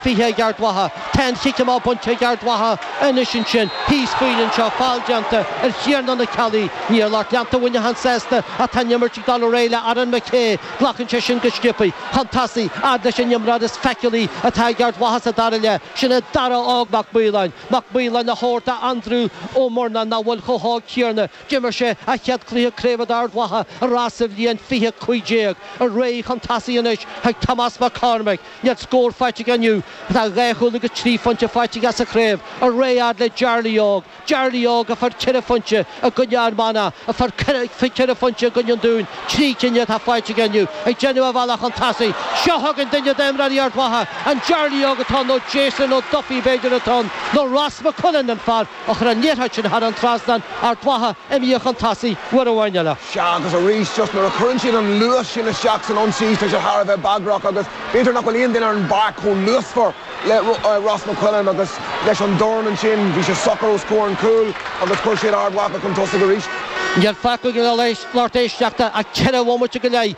20 ag Ard Mhacha. Tá an chic amach bainte ag Ard Mhacha anois ansin. Thíos fúinn anseo, feall déanta ar Thiarnán Ó Ceallaigh. Níl lucht leanta Mhuineacháin sásta ach tá an imirt ag dul ar aghaidh le Aaron McKay. Glacann sé sin go sciopthaí. Chun tosaigh, fhad leis an imreoir is feiceálaí atá ag Ard Mhacha sa dara leath, sin é Darragh Óg Mac Maoláin. Mac Maoláin á thabhairt do Aindriú Ó Murnáin nach bhfuil chomh hóg céanna. D'imir sé a chéad cluiche craobh do Ard Mhacha ar ais sa bhliain 2015. Ar aghaidh chun tosaigh anois chuig Tomás Mac Cormaic. Níl scór faighte aige inniu ach tá dhá chúl agus trí phointe faighte aige sa chraobh, ar aghaidh a fhad le Jarly Óg. Jarly Óg a fuair ceithre phointe i gcoinne Fhear Manach, a fuair ceithre phointe i gcoinne an Dúin, trí cinn atá faighte aige inniu, ag déanamh a bhealach chun tosaigh. Seo chugainn duine d'imreoirí Ard Mhacha, an Jarly Óg atá ann, nó Jason Ó Dufaigh b'fhéidir atá ann, nó Ross McQuillan, an fear a chuir an liathróid sin thar an trasnán, Ard Mhacha, imithe chun tosaigh uair amháin eile. Sea, agus arís, just nuair a chuireann siad an luas sin isteach san ionsaí, tá sé thar a bheith bagrach agus b'fhéidir nach bhfuil aon duine ar an bpáirc chomh luasmhar le Ross McQuillan agus leis an dorn ansin, bhí sé socair os comhair an chúil agus chuir siad Ard Mhacha chun tosaigh arís. Níl fágtha againn, a lucht éisteachta ach ceithre bhomaite go leith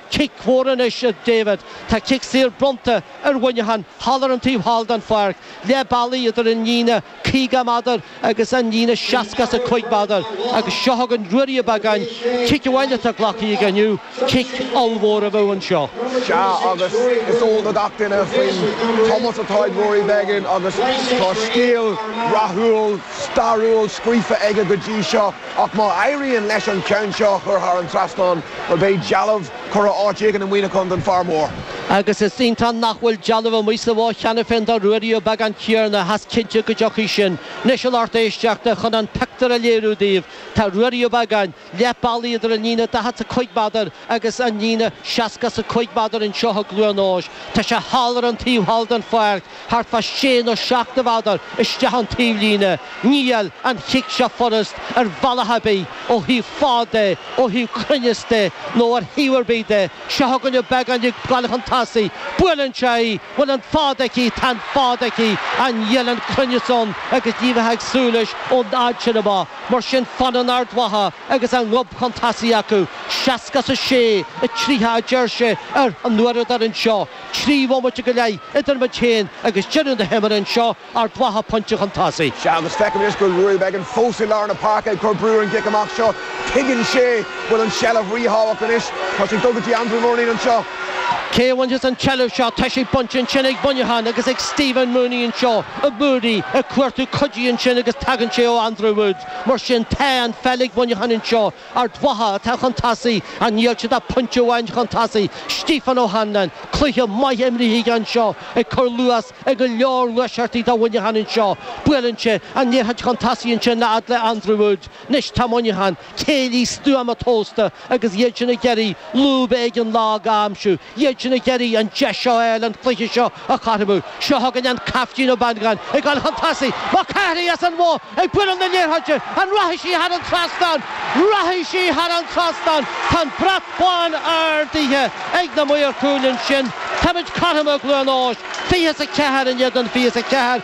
Cic mhór anois a David. Tá cic saor bronnta ar Mhuineachán thall ar an taobh thall den pháirc, leath bealaigh idir an líne 50 méadar agus an líne 65 méadar agus seo chugainn Ruairí Ó Beagáin, cic amháin atá glactha aige inniu, cic ollmhór a bheadh anseo. Sea agus is eol do gach duine faoin chumas atá ag Rory Beggan agus tá scéal rathúil, stairiúil scríofa aige go dtí seo. Ach má éiríonn leis an ceann seo a chur thar an trasnán, bhuel, beidh dealbh curtha áit éigin i Muineachán don fear mór. Agus is iontach nach bhfuil dealbh amuigh sa Bhoth cheana féin do Ruairí Ó Beagáin, a Thiarna, tá sé cinnte go dtiocfaidh sin. Anois, a lucht éisteachta, chun an pictiúr a léiriú daoibh, tá Ruairí Ó Beagáin, leath bealaigh idir an líne daichead 's a cúig méadar agus an líne seasca 's a cúig méadar anseo i gCluain Eois. Tá sé thall ar an taobh thall den pháirc. Thart fá sé nó seacht de mhéadair isteach ón taobhlíne. Níl an chic seo furast ar bhealach ar bith, ó thaobh fad de, ó thaobh cruinneas de, nó ar thaobh ar bith de. Seo chugainn an Beagánach ag gabháil chun tosaigh. Buaileann sé í. Bhfuil an fad aici, tá an fad aici. Ach níl an cruinneas ann agus ní bheifeá ag súil leis ón fhad sin amach. Mar sin fanann Ard Mhacha agus a ngob chun tosaigh acu. Seasca is a sé, tríocha a deir sé ar an uaireadóir anseo. Trí bhomaite go leith idir muid féin agus deireadh na himeartha anseo Ard Mhacha pointe chun tosaigh. Sea, agus feicim anois go bhfuil Rory Beggan fós i lár na páirce ag cur brú ar an gcic amach seo. Tuigeann sé go bhfuil an tseilbh ríthábhachtach anois. Tá sé ag dul go dtí Andrew Murnin anseo. Cé a bhainfeas an tseilbh seo? Tá sé bainte ansin ag Muineachán agus ag Stephen Mooney anseo, Mooney ag cuartú cuidithe ansin agus tagann sé ó Andrew Woods. Mar sin tá an pheil ag Muineachán anseo. Ard Mhacha atá chun tosaigh ach níl siad ach pointe amháin chun tosaigh. Stephen O'Hanlon, Cluiche maith imrithe aige anseo ag cur luas ar go leor gluaiseachtaí do Mhuineachán anseo. Buaileann sé an liathróid chun tosaigh ansin a fhad le Andrew Woods. Anois tá Muineachán, céillí stuama tomhasta agus iad sin ag iarraidh lúb éigin lag a aimsiú. iad sin ag iarraidh an deis seo a fháil an cluiche seo a chothromú. Seo chugainn an caiftín Ó Banagáin ag dul chun tosaigh. Mac Cárthaigh as an Bhoth ag bualadh na liathróide. An rachaidh sí thar an trasnán? Rachaidh sí thar an trasnán. Tá an brat bán ardaithe ag na maoir cúil ansin. Táimid cothrom i gCluain Eois. Fiche is a ceathair in éadan fiche is a ceathair.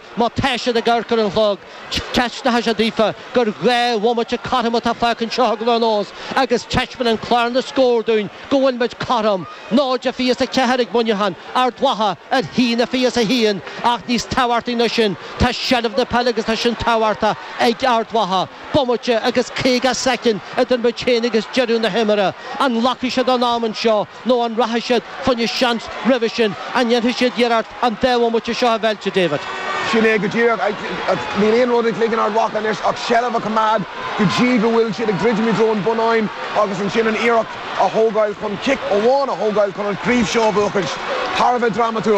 Má tá siad ag amharc ar an chlog, teispeánfaidh sé daofa gur dhá bhomaite cothrom atá fágtha anseo i gCluain Eois agus teispeánann clár na scór dúinn go bhfuil muid cothrom, náid a fiche is a ceathair ag Muineachán, Ard Mhacha ar a haon a fiche is a haon, ach níos tábhachtaí ná sin, tá seilbh na peile agus tá sin tábhachtach ag Ard Mhacha. Bomaite agus caoga soicind idir muid féin agus deireadh na himeartha. An nglacfaidh siad a n-am anseo? Nó an rachaidh siad fá choinne seans roimhe sin? An ndéanfaidh siad iarracht an dá bhomaite seo a mheilt, a David? Sin é go díreach. Níl aon rud i gcloigeann Ard Mhacha anois ach seilbh a choimeád go dtí go bhfuil siad ag druidim i dtreo an bhunáin agus ansin an iarracht a thógáil chun cic amháin a thógáil chun an chraobh seo a bhuachaint. Thar a bheith drámatúil.